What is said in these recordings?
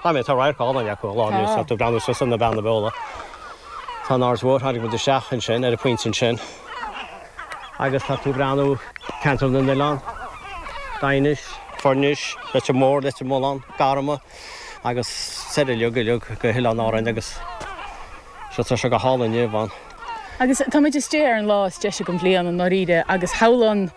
Tá an radharc álainn acu ar ball anois, ag breathnú suas na Beanna Beola. Tá an Ard Mhór, tháinig muid isteach ansin, ar an phointe ansin. Agus tá tú ag breathnú Ceantar na nOileán, Daighinis, Foirnis, Leitir Mór, Leitir Mealláin, Garmna agus soir uilig uilig go hOileáin Árainn agus tá sé go hálainn inniu ann. Agus tá muid istigh ar an lá is deise den bhliain, i ndáiríre, agus shamhlóinn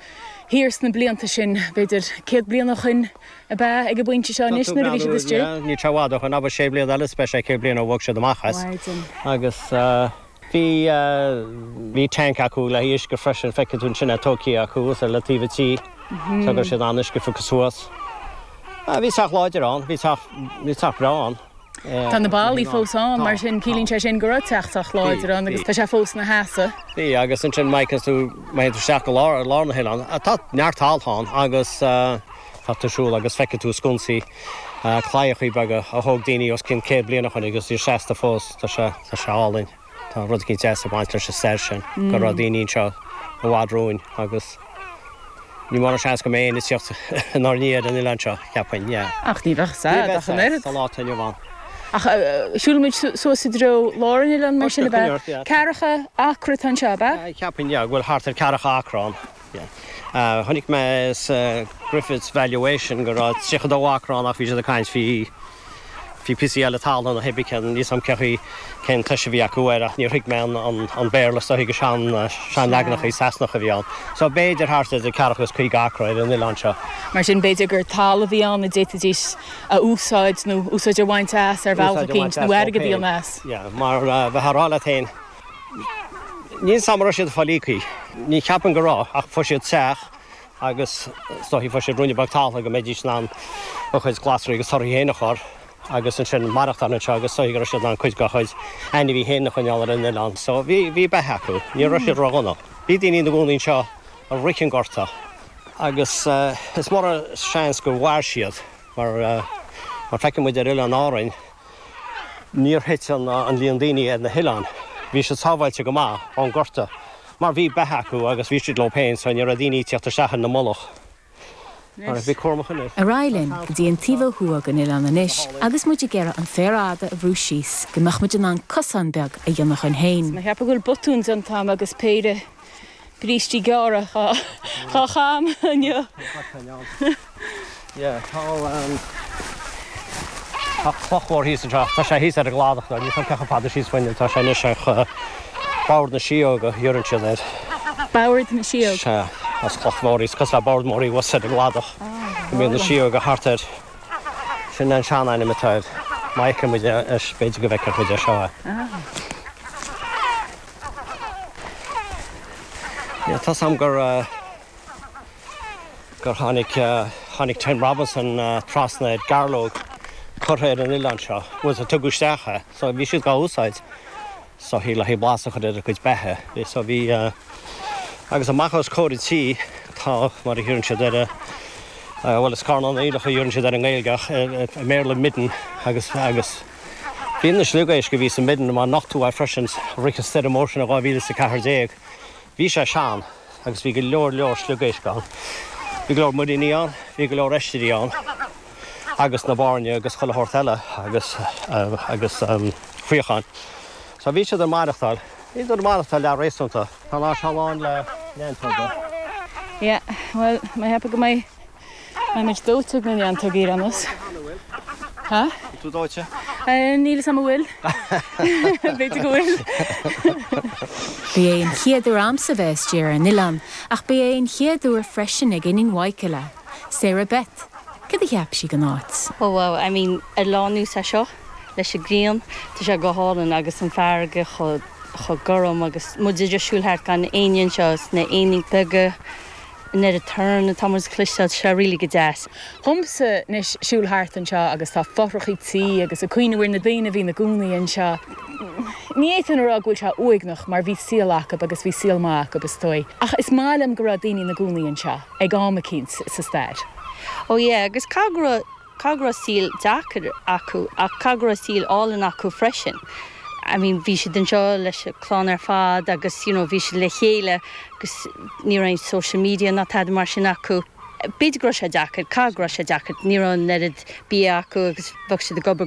thiar sna blianta sin, b'fhéidir céad bliain ó shoin, ab ea ag an bpointe seo anois nuair a bhí siad istigh. Ní i bhfad ó shoin ach sé bliana eile is beidh sé céad bliain ó bhog siad amach as. Mhaidin. Agus bhí, bhí tank acu le huisce freisin, feicfidh tú ansin é tógtha acu thuas ar le taobh an tí. Tógann siad an t-uisce suas. Bhí teach láidir ann, bhí teach, bhí teach breá ann. Tá na ballaí fós ann, mar sin ciallaíonn sé sin go raibh teach sách láidir ann agus tá sé fós ina sheasamh. Bhí, agus ansin má théann tú, má théann tú isteach go lár, ar lár an oileáin, tá neart tailte ann agus tá tú ag siúl agus feicfidh tú sconsaí, claíochaí beaga a thóg daoine os cionn céad bliain ó shin agus iad seasta fós, tá sé, tá sé álainn. Tá rud éigin deas ag baint leis an stair sin, go raibh daoine anseo i bhfad romhainn agus ní mórán seans go mbeidh éinne ag tíocht inár ndiaidh ar an oileán seo, cheapfainn, yeah. Ach ní bheadh siad ach an oiread. Ní bheadh siad sa lá atá inniu ann. Ach shiúil muid suas i dtreo lár an oileáin mar sin ab ea? Ceathracha acra atá anseo, ab ea? Cheapfainn, yeah, go bhfuil thart ar ceathracha acra ann. Yeah. Chonaic mé sa Griffiths Valuation go raibh 32 acra ann ach bhí siad ag caint faoi faoi píosaí eile talún an oiread céanna. Níl 's a'm cé chaoi, cén tomhais bhí acu air ach níor thuig mé an an an Béarla is dóigh gur sean sean leaganachaí Sasanacha a bhí ann. So b'fhéidir thart idir ceathracha is caoga acra ar an oileán seo. Mar sin b'fhéidir gur talamh a bhí ann a d'fhéadfaidís a úsáid nó úsáid a bhaint as ar bhealach eicínt nó airgead a dhéanamh as. Yeah mar bhí tú a' rá leat fhéin Níl 's a'm an raibh siad ag fáil íoctha, ní cheapfainn go raibh, ach fuair siad teach agus is dóichí go bhfuair siad ruainne beag talúna go mbeidís in ann a gcuid glasraí agus torthaí féin a chur agus ansin maireachtáil anseo agus is dóichí go raibh siad in ann cuid dá chuid ainmhithe féin a choinneáil ar an oileán. So bhí, bhí beatha acu, ní raibh siad ró-dhona. Bhí daoine ina gcónaí anseo i rith an Gorta agus is mór an seans gur mhair siad mar, mar feiceann muid ar Oileáin Árann, Níor thit an líon daoine ar na hoileáin, bhí siad sábháilte go maith ón gorta mar bhí beatha acu agus bhí siad leo féin so ní raibh daoine ag tíocht isteach sa mullach. Ar aghaidh linn go dtí an taobh ó thuaidh den oileán anois agus muid ag iarraidh an féar fhada a bhrú síos go mbeadh muid in ann cosán beag a dhéanamh dhuinn féin. Mé a' ceapadh go bhfuil botún déanta a'm agus péire. brístí gearra dhá chaitheamh inniu. Tá cloch mhór thíos anseo. Tá sé thíos ar an gcladach thoir. Níl sé baileach i bhfad síos faoi inniu. Tá sé anois ar Bord na Síóga, iarrann siad air. Bord na Síóg? Sea. Ó cloch mhór thíos, cosúil le bord mór i bhfus ar an gcladach. Go mbíonn na síóga thart air. Sin an seanainm atá air. Má fheiceann muid é, b'fhéidir go bhfeicfear muid é seo é. Dúradh liom gur tháinig Tim Robinson trasna ar ghairleog curtha ar an oileán seo, agus a tugadh isteach é. So bhí siad dhá úsáid. So le blas a chur ar a gcuid beatha. So bhí, agus amach os comhair an tí, tá, mar a thugann siad air a, bhuel is carnán aoileach a thugann siad air i nGaeilge ach i mBéarla midden agus, agus. B'in an sliogéisc a bhí sa midden a mba nochtadh é freisin i rith an stoirm mhór sin in 2014. Bhí sé sin agus bhí go leor leor sliogéisc ann. Bhí go leor muiríní ann, bhí go leor oisrí ann agus na bairnigh agus chuile shórt eile agus agus faochain. So bhí siad ag maireachtáil, bhí siad ag maireachtáil leath-réasúnta. Tá an áit seo lán le neantóga. Yeah, bhuel, má theip go mbeidh. Táimid dóite go ndéantar diúracas. Tá? Tá tú dóite? Níl fhios a'm an bhfuil. B'fhéidir go bhfuil. B'é an chéad uair dhomsa bheith istigh ar an oileán, ach b'é an chéad uair freisin ag iníon Mhichaela, Sarah Beth, cad a cheap sí den áit? Ó wow, I mean, ar lá mar seo, leis an ghrian, tá sé go hálainn agus an farraige chomh gorm agus muid ag siúl thart gan éinne anseo is na éinín beaga an oiread torann tá an méid a chloisteáil seo really go deas. Dhomsa anois siúl thart anseo agus tá fothrachaí tí agus ag cuimhniú ar na daoine a bhí na gcónaí anseo. Ní fhéadfainn a rá go bhfuil sé uaigneach mar bhí saol acub agus bhí saol maith acub is dóigh ach is maith liom go raibh daoine ina gcónaí anseo ag am eicínt sa stair. Oh yeah, agus cé go raibh Cé go raibh saol deacair acu, ach cé go raibh saol álainn acu freisin. I mean, bhí siad anseo leis an chlann ar fad agus you know bhí siad le chéile agus ní raibh aon social media ná tada mar sin acu. B'fhéidir go raibh sé deacair, caithfidh go raibh sé deacair, ní raibh an oiread bia acu agus bheadh siad ag obair go